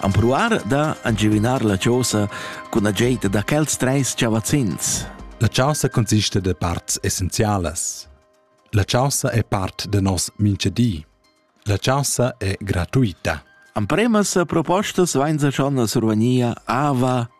Ampruar da angivinar la chausa cun ageita da quels treis chavazzins. La chausa consiste de parts essenzialas. La chausa è part de nos minche di. La chausa è gratuita. Ampremas propostas vain sa schon a survania ava,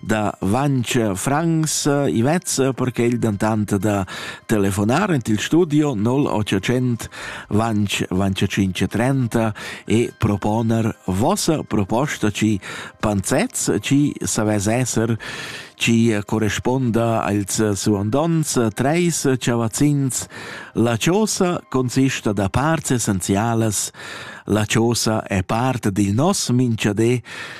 da Vancher Franks Ivez perché il dantant da telefonar int il studio 0800 Vanch Vanch 530 e proponer vossa proposta ci panzets ci savez esser ci corresponda als suandons treis chavazzins la chosa consista da parts essenzialas la chosa è part dil nos minchadé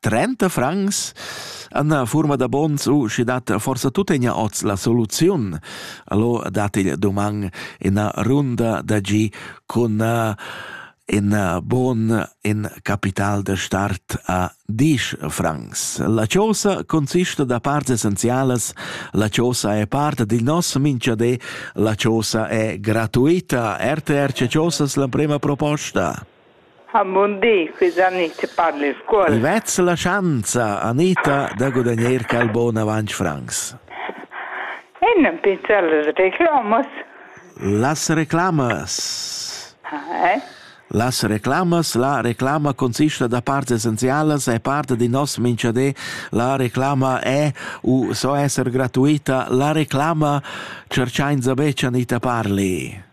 trenta francs Anna furma da bons u schi dat forsa tuttegna oz la soluziun. Allo dat il doman ina runda da gi cun uh, in uh, bon in capital de start a 10 francs. La chosa consiste da parts essenzialas, la chosa è parte di nos minchade, la chosa è gratuita. RTR ce chosas la prima proposta. ha mundì che Jannick parli in scuol. I vezza la schanza, Anita, da gudagner quel bon avanc francs. E non pinza las reclamas. Las reclamas? Eh? Las reclamas, la reclama consista da parts essenzialas e parte di nos minchadé, la reclama è u so esser gratuita, la reclama cerchainza bec Anita parli.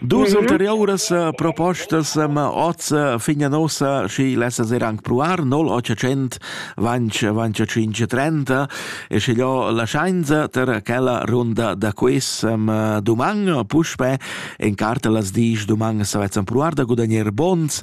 Dus ulteriuras propostas ma oz fin a nossa schi lessa ser anc provar 0800 vanch vanch 530 e sche io la scienza ter quella runda da quiz doman puspè en carta las dis doman savezzan provar da guadagner bons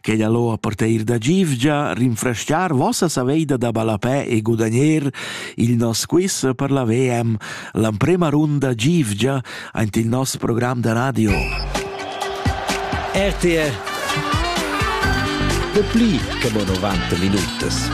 che da lo a parteir da givgia rinfresciar vossa saveida da balapè e gudagner il nos quiz per la VM, l'emprema runda givgia aint il nos program da radio. RTR De pli che mo 90 minutas.